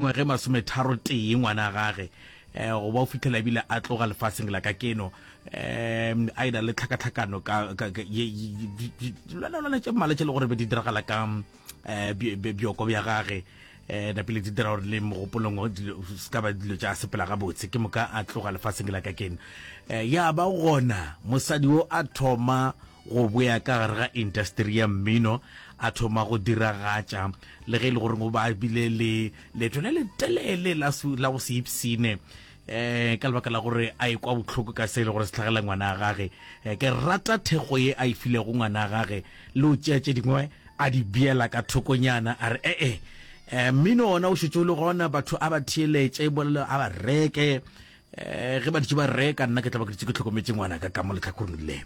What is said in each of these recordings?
Ngwage masometharo tee ngwana gage go ba o fihlela ebile a tloga lefaseng la ka keno a e na le tlhakatlhakano ka lwana tše mmala tše le gore be di diragala ka bjoko bja gage napile di dira gore le mogopolong se ka ba dilo tša sepela gabotse ke moka a tloga lefaseng la ka keno ya ba gona mosadi o a thoma Go boya ka gare ga intasteri ya mmino, a thoma go diragatša le ge e le gore go ba bile le leeto le le telele la su- la go se ipsine um ka lebaka la gore a e kwa bohloko ka se e le gore se tlhagela ngwana a gage Eh, ke rata thekgo ye a e filego ngwana a gage le o tšea tše dingwe a di beela ka thokonyana a re ee um mmino ona o šetše o le gona batho a ba theeletše bolelo a ba reke um ge baditše ba re ka nna ke tla ba ke ditse ke tlhokometse ngwana ka ka mo letlhakoreng le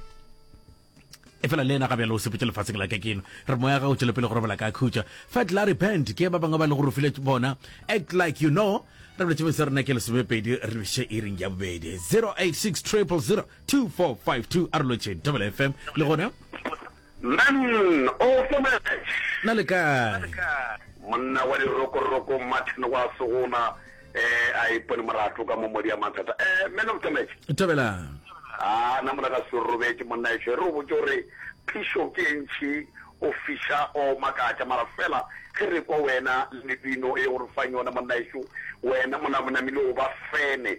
e fela le ena ga bjalo o sepetse lefatsheng la ka keno re moya ga o tšwele pele go robala ka khutša fa tla repent ke ba bangwe ba le gore o file bona act like you know re boletse mese rena ke lesomepedi re biše e reng ya bobedi 086 000 2452 a re lotšeng double fm le gona Man of the match. Na le kae? Monna wa dirokoroko Martin wa Segona eh a ipone morato ka mo modi a mathata eh man of the match. Thabelang. A na mona ka se robetše monna ešo e re o botše gore phišo ke e ntšhi o fiša o makatša mara fela ge re kwa wena le mebino e o re fang yona monna ešo wena mona monamile o ba fene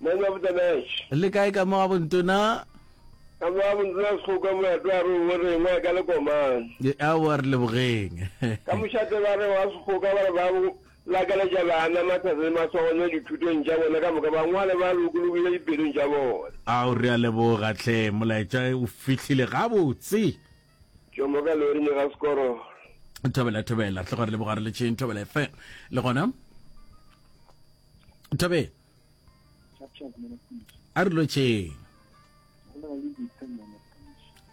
Man of the match. Le kae ka mo gabo ntona? Ka mo gabo ntona Sekgoka molato wa re o bo rengwa e ka le komang. Aowa re lebogeng. Ka mošate ba re wa Sekgoka ba re ba bo lakaletša bana mathata le maswagonyo dithutong tša bona ka moka ba ngwale ba lokologile dipelong tša bona. Ao re a leboga hle molaetša o fihlile gabotse. Tšomo ka lori ne ga sekoro. Thobela thobela hle gore leboga re le tšheng thobela fm le gona. Thobela. a re lotšheng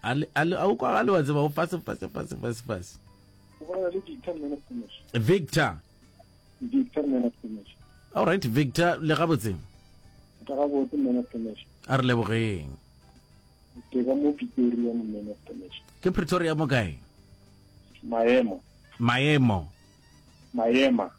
a o kwagale wa tseba o fase fase fase fase fase victor all right victor le gabotseng a re lebogeng ke pretoria mo kae maemo maemo maema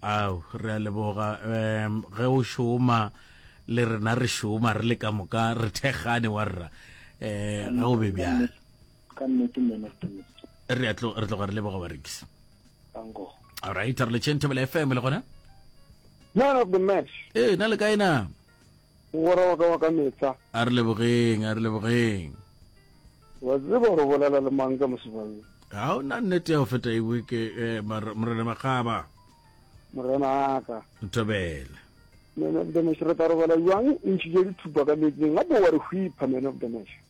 Ao, re a leboga. Um, ge o šoma le rena re šoma re le ka moka re thekgane wa rra. Um, ge o be bjalo. Ka nnete mena Timothy. Re a tlo re tloga re leboga barekisi. Tango. All right, re le Chentebele FM le gona. Man of the match. Eh, na le kae na? Mogwera wa ka wa ka mehla. A re lebogeng, a re lebogeng. Wa tseba gore bolela le mang ka mosebang? Ga o na nnete ya go feta ewe ke eh, Morena Makgaba. Morena aka. Ntobele. Man of the match re tla robala jwang o ntšhitše dithupa ka meetseng gape wa re hwipha man of the match.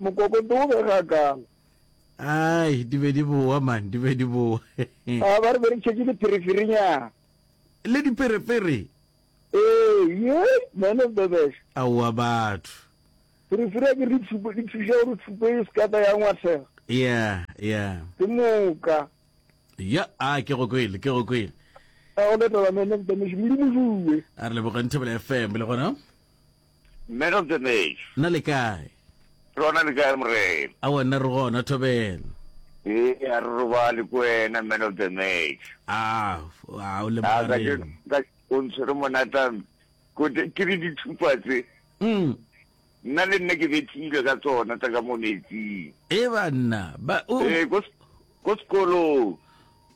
Mokokotlo o bega kang? Ai, di be di bowa man, di be di bowa. A ba re be re tšhetše diphereferinyana. Le diperepere? Ee, ye, man of the best. Aowa batho. Pherefere ya ke re tshupo, di thuša gore tshupo e se ka tla ya ngwathega. Yeah, yeah. Ke moka. Ya, a ke go kwele, ke go kwele. A o letela man of the mission, Modimo Juwe. A re lebogeng Thobela FM le gona. Mme re tsenetše. Na le kae? Lona le kae, Morena? Aowa, nna re gona, Thobela. Ee, a re robale ko wena, Man of the Match. A, a o le A, ka tše, mogareng. ka, o ntshwere monata, mme. Ko te, ke re dithupa tse. Umm. Nna le nna ke bethilwe ka tsona tsa ka mo metsing. Ee, banna. Ba, o. Ee, ko. Ko sekolong.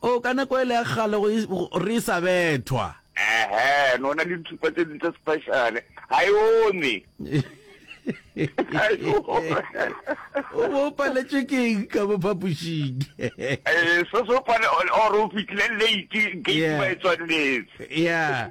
Oo, ka nako ele ya kgale go re e sa bethwa. Ehe, no na le dithupa tse ding tse special. Ha e ome. O bo paletšwe ke eng ka mo phapošing? Eh, so so pale or o fitlile late gate ba e tswaletse. Yeah.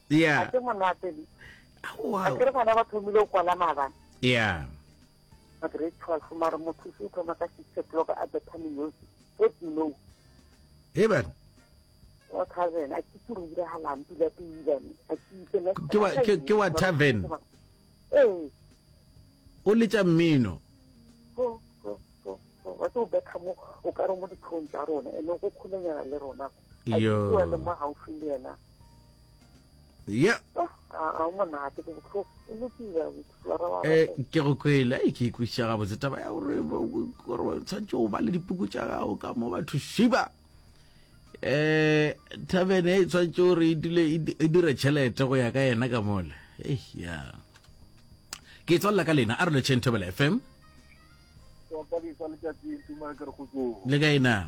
Yeah. a ke monate le Aowa. a ke re bana ba thomile go kwala maabane Yeah. ba grade twelve mare mothusi o thoma ka six o'clock a bethameng yosi what you know Hey bana. wa tavern a ke ke re diragalang pila piilane a ke itse next Ke wa- ke- ke wa tavern? ee O letša mmino. go- go- go- go. wa tse o betha mo o ka re mo ditlhong tsa rona ene go kgolenyana le rona ko a Yo. ke wele mo gaufi le yena ya Oh, a a o monate ke botlhoko o lokile abuti flora wa Eh, gago. ke go kwele ai ke ikwešiša gabotse taba ya gore bo- bo- gore o tshwanetse go ba le dipuku tša gago ka mo batho šiba um thabene e tshwanetse gore e dule e di- e dire tšhelete go ya ka yena ka mole Ei, ya ke tswalela ka lena a re letšheng thobela fm wa palisa letsatsi tuma ke re go tsoo le ka ena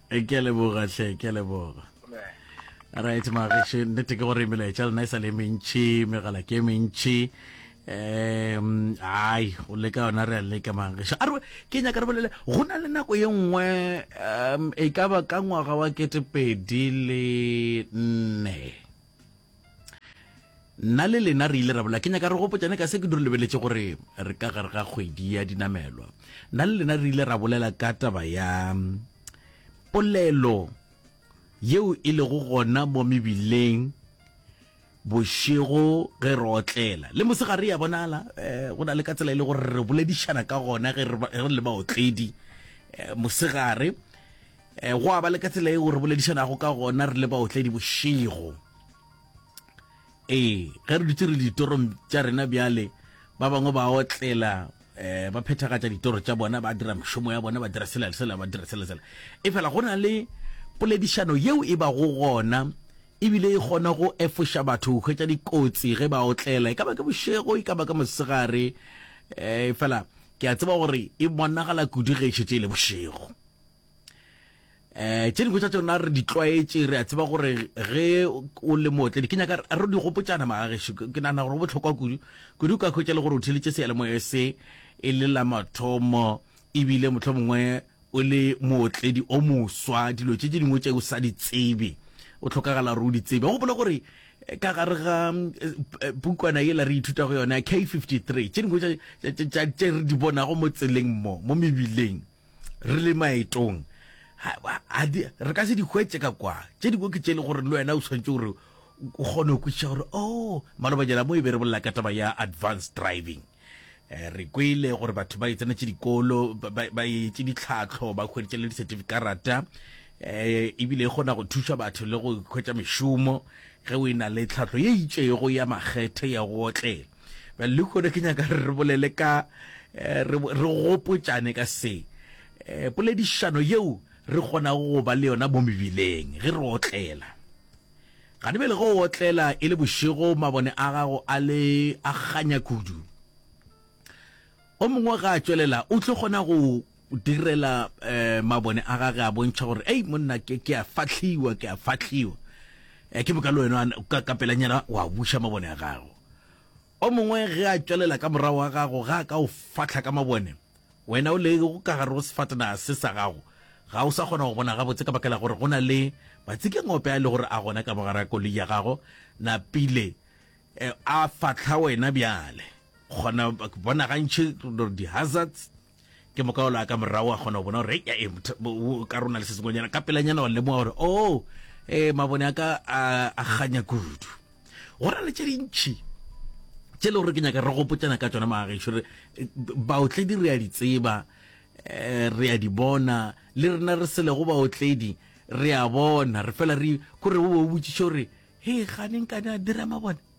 Eh, ke a leboga hle ke a leboga right mageshe nnete ke gore melaetša lena e sa le mentšhi megala ke e mentšhi um ai go leka yona re a leka mageshe a re ke nyaka re bolele go na le nako ye nngwe um e ka ba ka ngwaga wa ketepedi le nne nna le lena re ile ra bola ke nyaka re gopotšane ka se ke dure lebeletše gore re ka gare ga kgwedi ya dinamelwa nna le lena re ile ra bolela ka taba ya mm, polelo yeo e lego gona mo mebileng bošego ge re otlela le mosegare ya bonala um go na le ka tsela e le gore re boledišana ka gona ge re re le baotledi um mosegare E, go a ba le ka tsela eo re boledišanago ka gona re le baotledi bošego ee ge re dutse re ditorong tša rena bjale ba bangwe ba otlela um ba phethagatša ditoro tša bona ba dira mešomo ya bona ba dira sela le sela ba dira sela sela e fela go na le poledišano yeo e bago gona ebile e kgona go efoša batho go hwetša dikotsi ge ba otlela e ka ba ke bošego e ka ba ka mosegare um fela ke a tseba gore e bonagala kudu ge e šetse e le bošego eh tše dingwe tša tsona re di tlwaetše re a tseba gore ge o le mootledi ke nyaka re di gopotšana magageso ke nagana gore go botlhokwa kudu kudu o ka hwetša le gore o theletše seyalemoya se e le la mathomo ebile motlho mongwe o le mootledi o moswa dilo tše tše dingwe tše o sa di tsebe o tlhokagala gore o di tsebe gopola gore eh, ka gare ga eh, pukwana e la re ithuta go yona k53 tše dingwe tše re di bonago mo tseleng mo mo mebileng Re le maetong, re ka se di hwetše ka kwa. Tše dingwe ke tše le gore le wena o tshwanetse gore o kgone go kwešiša gore o oh, malobanyana mo e be re bolela ka taba ya advanced driving eh, re kwele gore batho ba e tsenetse dikolo ba etse ditlhatlho ba hweditše le di-certificarata eh ebile e kgona go thuša batho le go hwetša mešomo ge o e na le tlhatlho ye itšego ya makgethe ya go otlela lehono ke nyaka re bolele ka eh, re gopotšane ka se eh, poledišano yeo re kgonago go ba le yona mo mebileng ge re otlela gane bele go otlela e le bošego mabone a gago a le a kganya kudu o mongwe ga a tšwelela o tlo kgona go o direla um mabone a gage a bontšha gore ei monna ke ke a fatlhiwa ke a fatlhiwa um ke boka le wena o ka ka pelanyana wa buša mabone a gago o mongwe ge a tšwelela ka morago wa gago ga a ka o fatlha ka mabone wena o le go ka gare go sefatana se sa gago ga o sa kgona go bona gabotse ka bakela gore go na le matsikengope a e le gore a gona ka mogara koloi ya gago napile um a fatlha wena bjale kgona bona gantšhi di-hazards Ke moka o la ka morago a kgona go bona gore ya e ka rona le se sengwenyana ka pelanyana wa lemoga gore o oh, e eh, mabone a ka a ganya kudu go ra le tse dintšhi tse e le gore ke nyaka re gopotsana ka tsona magageso re eh, baotledi re a di tseba um re a di bona le rena re selego baotledi re a bona re fela re kore o botsiše gore he ganeng ka ne a dira mabone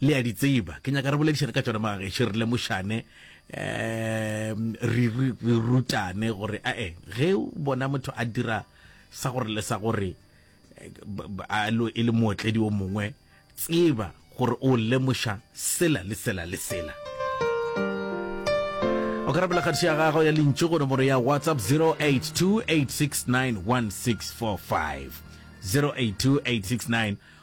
Le a di tseba, ke nyaka re boledišane ka tšona magageši, re lemošane, um, re, re, re rutane gore ae, ge o bona motho a dira sa gore le sa gore, eh, b- b- a lo e le mootledi o mongwe, tseba gore o lemoša sela le sela le sela. O ka rapela kgatišo ya gago ya lentšu go nomoro ya WhatsApp 082 869 1645. 082 869